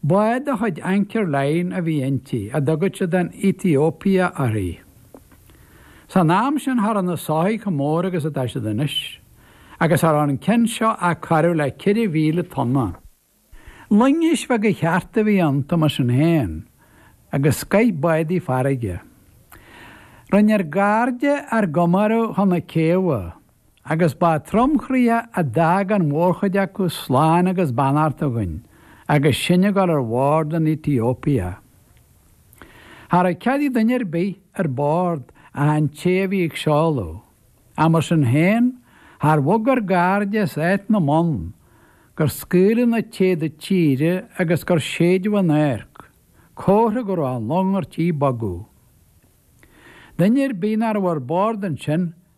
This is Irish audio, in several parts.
Bád de chuid Anchor Line a bhí inti, a dtugadh siad an Ethiopia uirthi. San am sin cha rabh na soithigh chomh mór agus atá siad anois, agus cha rabh an ceann seo ach corradh le ceithre mhíle tonna. Loingis bheaga chearta a bhí iontu mar sin féin, agus scoith bádaí farraige. Rinne ár gcairde ár gcomóradh chun na céibhe. Agus ba tromchroíoch a d'fhág an mhórchuid acu slán agus beannacht againn agus sinn ag dul ar bhord an Ethiopia. Cha rabh cead ag duine ar bith ar bord ach an té a bhí ag seoladh. Ach mar sin féin char bhog ár gcairde as áit na mbonn gur scaoileadh na téada tíre agus gur séideadh an adharc, comhartha go rabh an long ar tí bogadh. Duine ar bith ná rabh ar bord ansin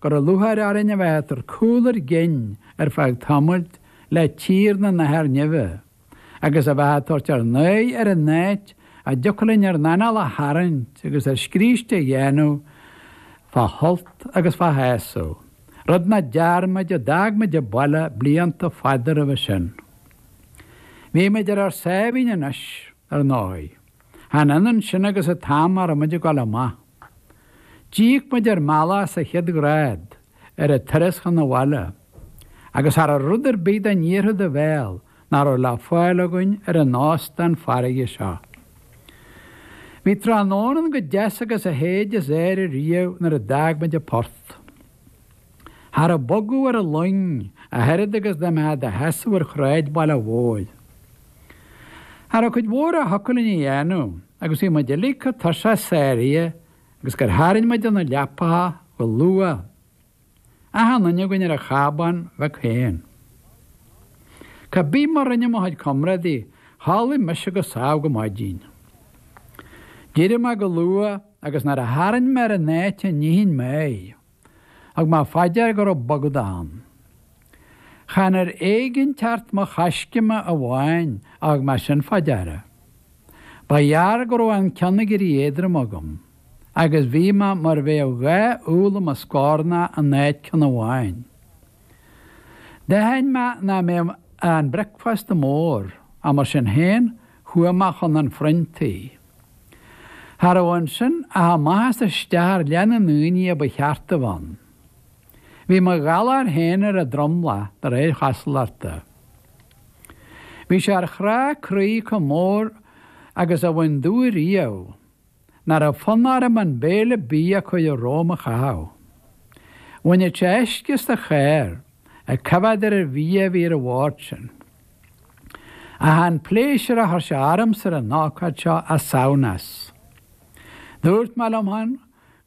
go rabh lúcháir orainn a bheith ag tabhairt cúl ár gcinn ar feadh tamaill le tír na n-athair nimhe, agus a bheith ag tabhairt ár n-aghaidh ar an áit a dtiocfadh linn ár n-anáil a tharraingt agus ár scríste a dhéanamh fá shult agus fá shásamh, rud ná dearn muid ó d'fhág muid an baile blianta fada roimhe sin. Bhí muid ar ár sáimhín anois, ar ndóigh. Chan ionann sin agus an t-am a raibh muid ag dul amach. D'íoc muid ár mbealach sa chéad ghrád ar an turas chun an bhaile, agus cha rabh rud ar bith dá n-iarrfadh do bhéal ná raibh le fáil againn ar an óstán farraige seo. Bhí tráthnóna ann chomh deas agus a shéid as aer ariamh nuair a d'fhág muid an port. cha rabh bogadh ar an luing ach oiread agus dá mbeitheá i do sheasamh ar shráid an bhaile mhóir. Cha rabh cuid mhór a thiocfadh linn a dhéanamh agus bhí muid uilig chomh tuirseach sáraithe agus gur tharraing muid ar na leapacha go luath, achan duine againn ar a chábán beag féin. Cá bith mar rinne mo chuid comrádaí chodlaigh mise go sámh go maidin. D'éirigh mé go luath agus nuair a tharraing mé ar an áit a nífinn mé, Thug mé fá dear go raibh bogadh ann. Chan ar éiginnteacht mo choiscéime amháin a thug mé sin fá deara. Ba ghearr go raibh an ceann ag éirí éadrom agam agus bhí mé mar a bheadh dhá úll i mo scornach in áit ceann amháin. D'aithin mé ná mbeadh an bricfeasta mór, ach mar sin féin chuaigh mé chun an phroinntí. Cha rabh ansin ach amach is isteach ar leath na ndaoiní a ba cheart a bheith ann. Bhí mo ghalar féin ar an tromlach de réir chosúlachta. Bhí sé ar chrá croí chomh mór agus a bhain domh ariamh ná rabh fonn orm an béile bídh a cuireadh romham a chaitheamh. Bhainfeadh sé uisce as do chár ag coimhéad ar an bhia a bhí ar an bhord sin. Ach chan pléisiúr a chuir sé ormsa ar an ócáid seo ach samhnas. Dúirt mé liom féin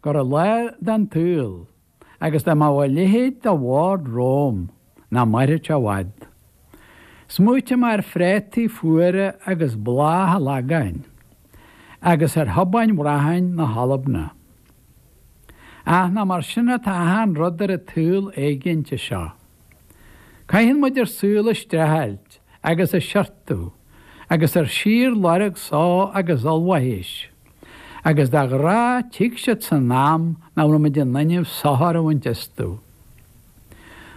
go raibh lá den tsaol agus dá mbeadh a leithéid de bhord romham nach mairfeadh sé i bhfad. Smaoitigh mé ar phréataí fuara agus bláthach an Lagáin agus ar thobáin bhracháin na hAlbana. Ach nach mar sin atá achan rud ar an tsaol éiginnte seo. Caitheann muid ár saol ag streachailt agus ag siortú agus ar síorlorg só agus ollmhaithis. Agus de ghnáth tig siad san am nach raibh muid in innimh sochar a bhaint astu.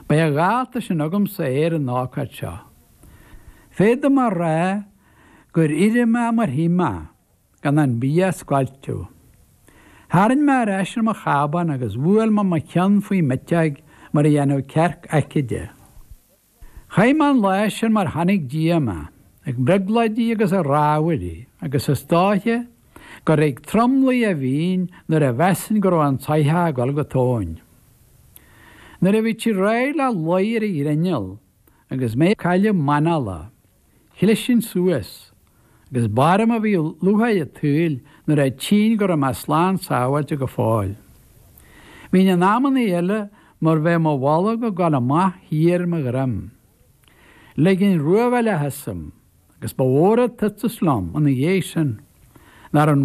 B'é a dhálta sin agamsa é ar an ócáid seo. Féadaim a rá gur éirigh mé mar shuigh mé. gan an bia a scoilteadh. Tharraing mé ar ais ar mo chábán agus bhuail mé mo cheann faoi m'eiteog mar a dhéanfadh cearc aicide. Chaith mé an lá sin mar chonaic Dia mé, ag brionglóidí agus ag rámhaillí, agus is dóiche gur ag tromluí a bhínn nuair a mheasainn go raibh an tsoitheach ag dul go tóin. Nuair a bhíodh sí réidh le luí ar an ghrinneall agus mé ag cailleadh m'anála, chlisinn suas, agus b'orm a bhíodh lúcháir a' tsaoil nuair a tchínn go raibh mé slán sábháilte go fóill. Bhínn in amannaí eile mar bheadh mo bholg ag gabháil amach thiar mo dhroim. Leiginn ruadh a leath asam, agus ba mhór a' tuiteas liom ina dhéidh sin, nár